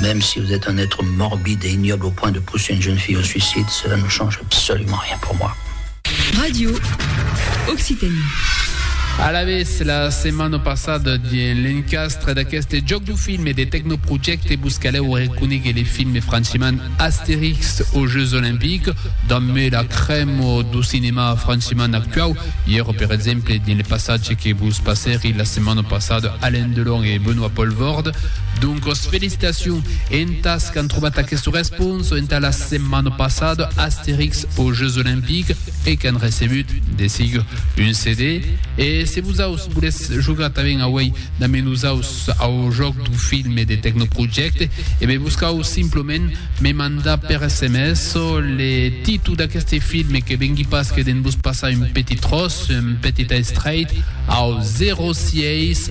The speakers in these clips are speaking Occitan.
Mèm si vous êtes un être morbide et ignoble au point de pousser une jeune fille au suicide, cela ne change absolument rien pour moi. Radio Occitanie. Alavetz, la setmana passada, dins l'encastre d'aqueste jòc du film e de Tecnoprojecte vos calèu reconéguer le film franchement Astérix aux Jeux Olympiques, damb la crèma du cinèma franchement actuau. Ièra, per exemple, dins le passatge que vos passèri la setmana passada Alain Delon e Benoît Poelvoorde. Doncos felicitacion entas qu'an trobat aquesta responsa entà la setmana passada Astèrix aux Jeux Olympiques e qu'an recebut de sigur un CD. E se vosaus volètz jogar tanben auèi damb nosaus au jòc dau filme de Tecnoprojecte, e be buscaus simplement me mandar per sms le títol d'aqueste filme que vengui pas que de'n vos passar un petit tròç, un petit estrèit, au 06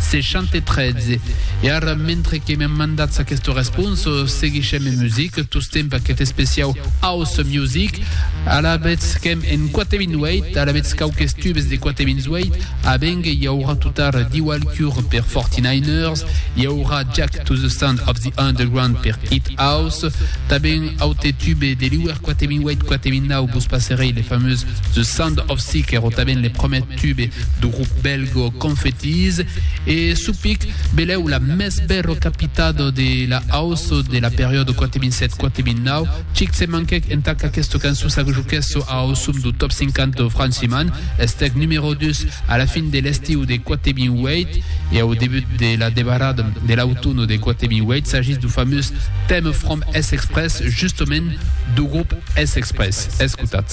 613. E ara, mentre que me mandatz aquesta responsa, seguishem en music, tostemp aquest especiau House Music. Alavetz qu'èm en 428, alavetz quauques tubes de 428, a Benge i aurà totar Diwal Cure per 49ers, i aurà Jack to the Sound of the Underground per Hit House, tabèn aute tube de l'Iwer 428-429 vos passerei le fameux The Sound of Sea qu'èro tabèn le promèt tube du grup belgo Confettis e Supic belèu la mès bèro capitat de la house de la periòda 2007-2009. Chic se manquèc entà qu'aquesta cançon s'ajuquèsse au som du Top 50 de Franciman, estèc numèro 2 a la fin de l'estiu de 2008 e au debut de la debarada de l'autun de 2008, s'agís du famós Theme From S-Express, justament du grup S-Express. Escotatz.